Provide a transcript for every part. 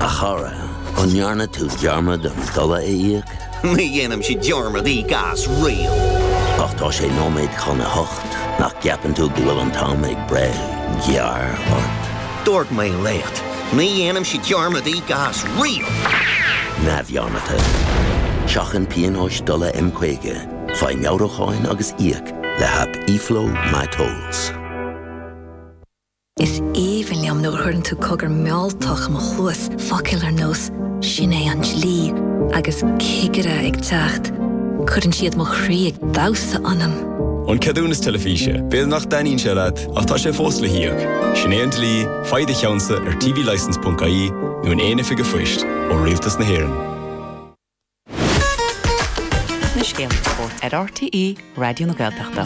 A chara, an ndearna tú dearmad an dola a íoc? Ní dhéanaimse dearmad íoc as riamh. Ach tá sé nóiméad chun a hocht, nach gceapann tú go bhfuil an t-am ag breith gearr ort? Dúirt mé leat, ní dhéanaimse dearmad íoc as riamh! Neamhdhearmadta. Seachain pionóis dola M50, faigh meabhrúcháin agus íoc le haip eFlow MyTolls. Is aoibhinn liom nuair a chuireann tú cogar mealltach i mo chluas, focail ar nós 'Sin é an dlí' agus 'Cigire ag teacht', cuireann siad mo chroí ag damhsa ionam! An ceadúnas teilifíse, b'fhéidir nach dtaitníonn sé leat ach tá sé fós le híoc. Sin é an dlí, faigh do cheannsa ar tvlicence.ie nó in aon oifig an phoist ó Rialtas na hÉireann. na scéalta spóirt ar RTÉ Raidió na Gaeltachta.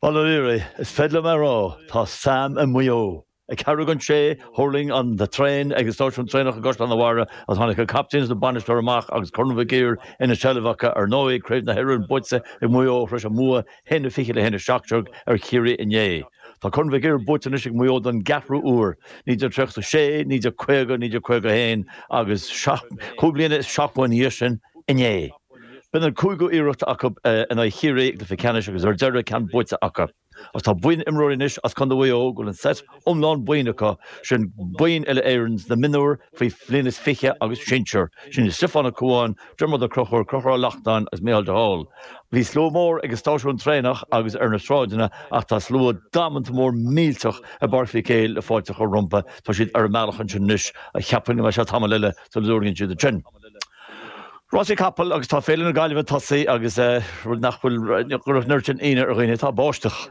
Bhuel, a Ruairí, is féidir liom a rá, tá Sam i Maigh Eo. Ag ceathrú don sé, thuirling an traein ag an stáisiún traenach i gCaisleán an Bharraigh agus tháinig an captaen is an bainisteoir amach agus Corn Mhic Uidhir ina seilbh acu. Ar ndóigh, Craobh na hÉireann buaite ag Maigh Eo tar éis a mbua a haon a fiche le haon a seacht déag ar Chiarraí inné. Tá Corn Mhic Uidhir buaite anois ag Maigh Eo don gceathrú uair, 1936, 1950, 1951 agus cúig bliana is seachtó ina dhiaidh sin, inné. B'in an cúigiú iarracht acu in aghaidh Chiarraí i gcluiche ceannais agus ar deireadh ceann buaite acu. Agus tá buíon imreoirí anois as Contae Mhaigh Eo go bhfuil an seit iomlán boinn acu, sin boinn Uile-Éireann sna mionúir faoi bhliain is fiche agus sinsir, sin Stiofán Ó Comháin, Diarmuid Ó Conchúir, Conchúr Ó Lachtnáin agus Micheál de Hál. Bhí slua mór ag an stáisiún traenach agus ar na sráideanna ach tá slua damanta mór millteach i bPáirc Mhic Éil le fáilte a chur rompu. Tá siad ar a mbealach ansin anois ach cheapfainn go mbeidh sé tamall eile sula dtabharfaidh siad ansin. Rásaí capall agus tá Féile na Gaillimhe tosaithe agus rud nach bhfuil ag cur an oiread sin ionadh ar dhaoine, tá báisteach.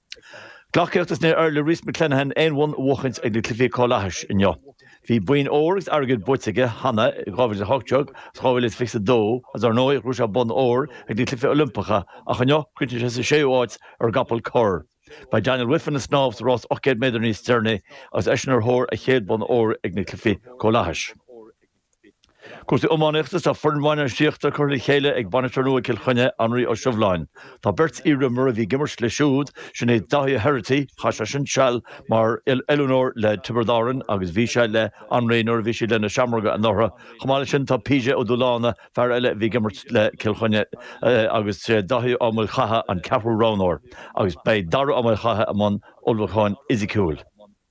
Gleacaíocht is níor éirigh le Rhys McClenaghan aon bhonn a bhuachaint ag na Cluichí Comhlathais inniu. Bhí boinn óir agus airgid buaite aige cheana i 2018 agus 2022 agus ar ndóigh ghnóthaigh sé bonn óir ag na Cluichí Oilimpeacha ach inniu chríochnaigh sé sa séú áit ar an gcapall corr. Beidh Daniel Wiffen ag snámh sa rás 800 méadar níos deireanaí agus eisean ar thóir a chéad bhonn óir ag na Cluichí Comhlathais. Cúrsaí iománaíochta is tá foireann bhainistíochta curtha le chéile ag bainisteoir nua Cill Chainnigh, Anraí Ó Sibhleáin. Tá beirt iarimreoirí a bhí ag imirt leis siúd, sin iad Dáithí Herity, chaith seisean seal mar oiliúnóir le Tiobraid Árainn agus bhí sé le Anraí nuair a bhí siad le Na Seamróga anuraidh. Chomh maith leis sin tá PJ Ó Dúláine, fear eile a bhí ag imirt le Cill Chainnigh agus Dáithí Ó Maolchatha an ceathrú roghnóir agus beidh Darragh Ó Maolchatha i mbun ullmhúcháin fhisiciúil.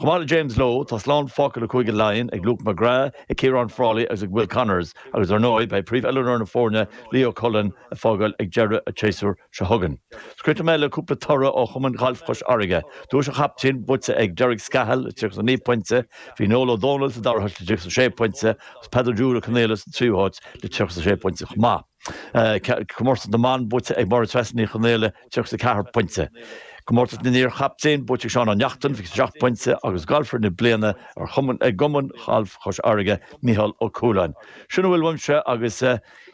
Chomh maith le James Lowe, tá slán fágtha le Cúige Laighean ag Luke McGrath, ag Ciaran Frawley agus ag Will Connors agus, ar ndóigh, beidh príomhoiliúnóir na foirne, Leo Cullen, ag fágáil ag deireadh an tséasúir seo chugainn. Scoirfidh mé le cúpla toradh ó Chumann Gailf Chois Fharraige. Duais an chaptaein buaite ag Derek Scahill le 39 pointe, bhí Noel Ó Dónaill sa dara háit le 36 pointe agus Peadar Júra Conaola sa tríú háit le 36 pointe chomh maith. Comórtas na mBan buaite ag Máire Treasa Ní Chonaola, 34 pointe. Comórtas na n-iarchaptaen buaite ag Seán Ó Neachtain, 27 pointe, agus Galfaire na Bliana i gCumann Gailf Chois Fharraige, Micheál Ó Cúláin. Sin a bhfuil uaimse agus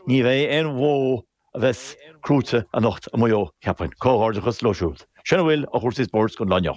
ní bheidh aon bhó a bheas crúite anocht i Maigh Eo, cheapfainn. Comhghairdeachas leo siúd sin a bhfuil de chúrsaí spóirt go dona leo.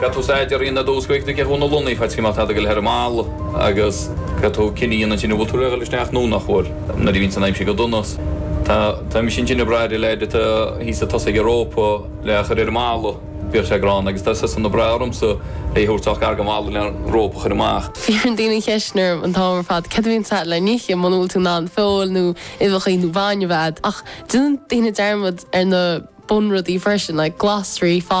Petrus A deir Ian Eddowes go bhféadfadh ceathrú na Lunaí feicthe go mbeadh tada ag gabháil thar an mballa agus Petrus Kinney a dhéanann an cinneadh a bhfuil tú réidh isteach nó nach bhfuil. Nuair a bhíonns an aimsir go dona tá tá mise cineál ag brath ar an leaid atá thíos chun tosaigh an rópa le a chur ar an mballa. Bhíodh sé gránna agus tá seisean ag brath ormsa é a thabhairt sách gar don bhalla le rópa a chur amach. Cuireann daoine an cheist sin orm an t-am ar fad cad a bhíonns le n-ithe muna bhfuil tú in ann feoil nó uibheachaí nó bainne a fháil ach déanann daoine dearmad ar na bunrudaí freisin like glasraí, fataí.